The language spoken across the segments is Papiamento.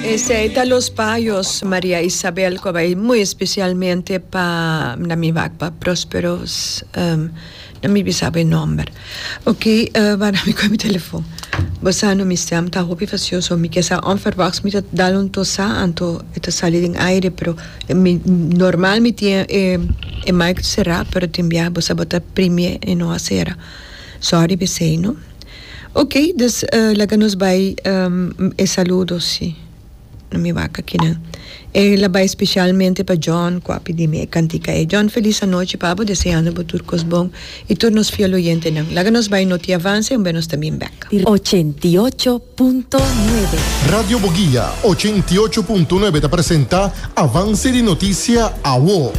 Esey ta los payos Maria Isabel cu a bay muy especialmente pa na mi wak pa Prospero um no mi bisaba e nomber ok uh wak mi coge mi telefoon bo sa no mi stem ta hopi facioso mi ke sa onverwachts mi ta dal un tosa anto e ta sali den aire pero mi normal mi tin e mic cera pero tin bia bo sa bo ta prime e no a cera sorry bisey no. Ok dus laga nos bai e saludos si no mi wak akinan e la bai specialmente pa John cu a pidi mi e cantica e John feliz anochi pabo deseando bo tur cos bon y tur nos fiel oyentenan laga nos bai noti avance un be nos ta bin bek. Ochenta i ocho punto nuebe. Radio Boguia ochenta i ocho punto nuebe ta presenta Avance di Noticia, awo.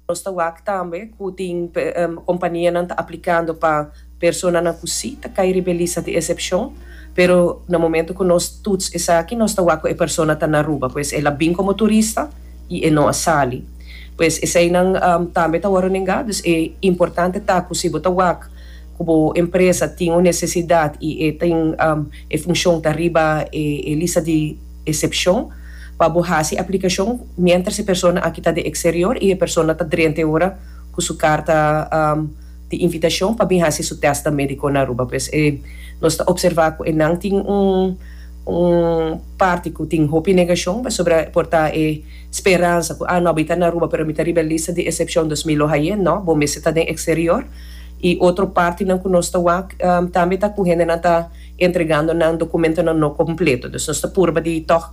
Nos ta wak tambe ku tin kompanianan ta aplikando pa personanan ku si ta kai riba e lista di esepshon, pero na momentu ku nos tuts esaki nos ta wak ku e persona ta na Aruba, pues el a bin komo turista i e no a sali. Pues eseinan tambe ta wòrdu nengá, dus e importante ta ku si bo ta wak ku bo empresa tin un nesesidat i e tin e funshon ta riba e lista di. Excepcion, Pa bo haci aplicacion mientras e persona aki ta den exterior y e persona ta drente ora cu su carta di invitacion pa bin haci su test medico na Aruba pues nos ta observa cu enan tin un parti cu tin hopi negacion pasobra por ta e speransa cu ah no mi ta na Aruba pero mi ta riba e lista di excepcion dus mi lo haye no bo mester ta den exterior y otro partinan cu nos ta wak tambe ta cu hendenan ta entregando nan documentonan no completo, dus nos ta purba di tog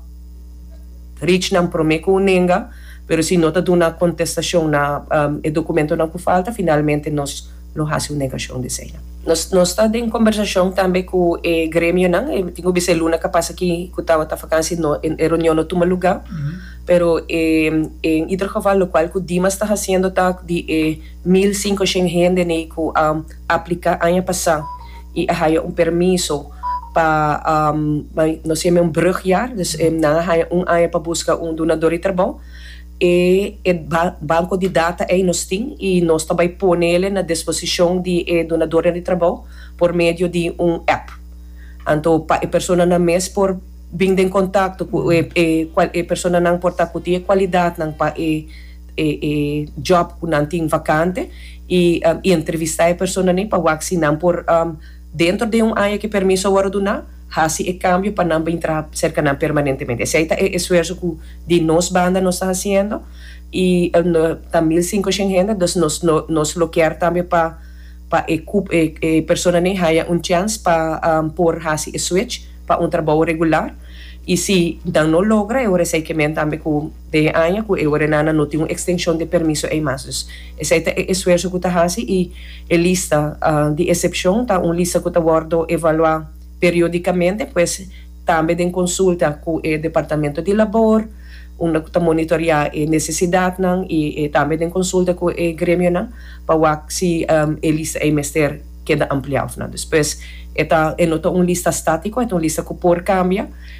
reach nan prome cu un nenga, pero si no ta duna contestacion na e documentonan cu falta, finalmente nos lo haci un negacion di esey nan. Nos nos ta den conversacion tambe cu e gremionan, e tin cu bisa e luna cu a pasa aki cu tawata vakantie no e reunion no tuma lugar, pero e en ieder geval locual cu Dimas ta haciendo ta di e mil cincoshen hende nei cu a. aplica aña pasa y a haya un permiso pa nos llama un brugjaar dus nan a haya un aña pa busca un donador di trabou e e banco di data ey nos tin y nos ta bay ponele na disposicion di e donadornan di trabou por medio di un app anto pa e personanan mes por bin den contacto cu e personanan por ta cu tin e cualidadnan pa e e job ku nan tin vakante i entrevistá e personanan pa wak si nan por dentro den un aña ku e permiso a wòrdu duná hasi e kambio pa nan bin traha serka nan permanentemente. Esei ta e esfuerso ku di nos banda nos ta hasiendo i ta mil sinkoshèn hende dus nos nos lo kier tambe pa pa e kup e personanan haña un chèns pa por hasi e switch pa un trabou regular i si nan no logra e ora esei ke men tambe ku Den e aña ku e orenana no tin un ekstenshon di e permiso ei mas. Dus esei ta e esfuerso ku ta hasi i e lista di esepshon ta un lista ku ta wòrdu evaluá periodikamente, pues tambe den konsulta ku e departamento di labor unda ku ta monitoreá e nesesidatnan i tambe den konsulta ku e gremionan pa wak si e lista ei mester keda ampliá òf no. Dus pues e no ta un lista státiko, e ta un lista ku por kambia.